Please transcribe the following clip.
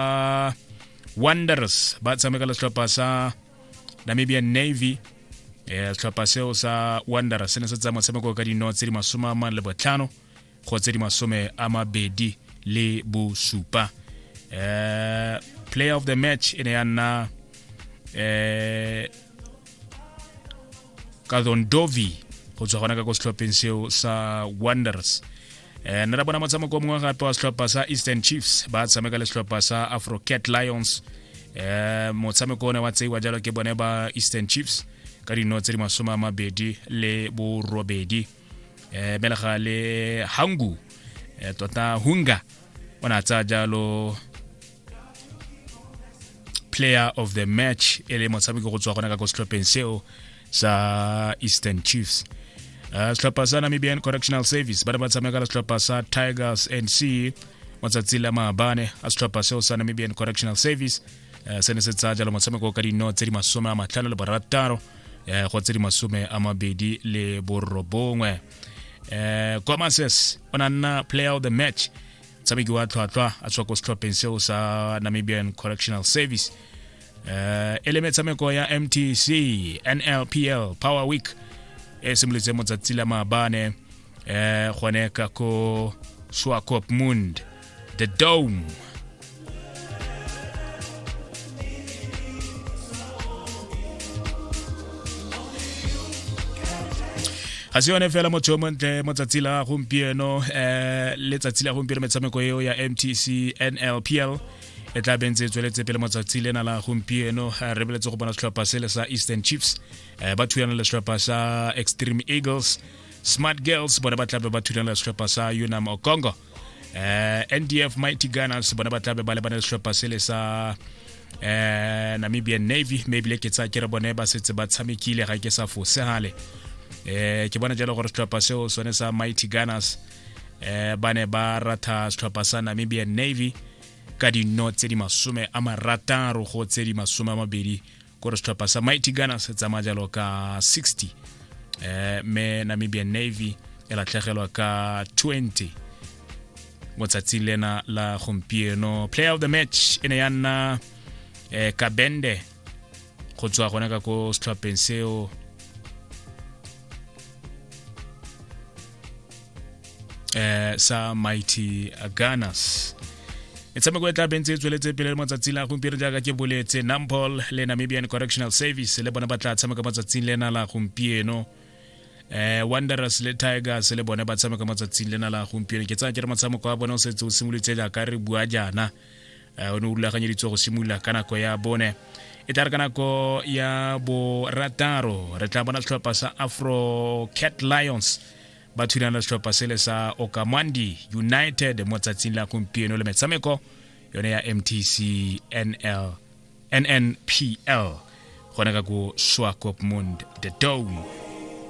uh, wonders ba tshameka le setlhopha sa namibian navy eh, setlhopha seo sa wonders se ne se tsaya motshameko ka dino tse di masome a mane le botlhano go tse di masome a mabedi le bosupa eh, player of the match e ne ya nna eh, kadondovi go tswa gona ka ko setlhopheng seo sa wonders eh, nna ra bona motshameko o mongwe gape wa setlhopha sa eastern chiefs ba tshameka le setlhopha sa afrocat lions eh, motshameko o ne wa tseiwa jalo ke bone ba eastern chiefs ka dino tse di masome a mabedi le borobedi eh, belega le hangu eh, tota hunga o ne a tsaya jalo player of the match e le motshameko go tswa gona ka ko setlhopheng seo sa eastern chiefs uh, setlhopha sa namibian correctional service ba ne ba tshameka le setlhopha sa tigers nc matsatsi la maabane a setlhopha seo sa namibian correctional service uh, se ne se tsaya jalo motshameko ka dino tse di masome a matlhano le borataro uh, go tse di masome a mabedi le borobongwe uh, kwa mases o na nna player of the match tshameki wa tlhwatlhwa a tswa ko setlhopheng seo sa namibian correctional service uh, e le metshameko ya mtc nlpl power week e simolotse motsatsi la maabane um gone ka ko swakop mund the dome ga se yone fela motho yo montle mo tsatsi la gompieno um eh, letsatsi la gompieno metshameko eo ya mtc nlpl e tla bentse e tsweletse pele matsatsi lena la gompieno eh, re beletse go bona setlhopha sele sa eastern chiefs eh, ba thulana le setlhopha sa extreme eagles smart girls bone ba tlabe ba thulana le setlhopha sa unam okongo eh ndf mighty gunners bona ba tlabe ba lebana le setlhopha sele sa eh namibian navy mme ebile ke tsa ke re bone ba setse ba tshamekile ga ke sa fosegale eh ke bona jalo gore setlhopha seo sone sa mighty gunners eh ba ne ba ratha setlhopha sa namibian navy ka dino tse di masome a marataro go tse di masome a mabedi kore setlhopha sa mighty ghana se tsamaya jalo ka 60 eh, me namibian navy e latlhegelwa ka 20 mo tsatsing lena la gompieno player of the match e ne ya nna eh, kabende go tswa gone ka ko setlhopheng seo eh, sa mighty gunners metshameko e tla bentse e tsweletse pele le matsatsi la gompieno jaaka ke boletse nampol le namibian correctional service le bone ba tla tshameka matsatsing lena la gompieno eh wanderers le tigers le bone ba tshameka matsatsing lena la gompieno ke tsaya ke re motshameko wa bone o setse o simolotse jaaka re bua jaana o ne o rulaganyeditswe go simolola ka nako ya bone e tla re ka nako ya borataro re tla bona setlhopha sa afro cat lions ba thulana le setlhopha sele sa okamandi united mo tsatsing la gompieno le metshameko yone ya mtc nl nnpl gone ka ko swakopmund the dome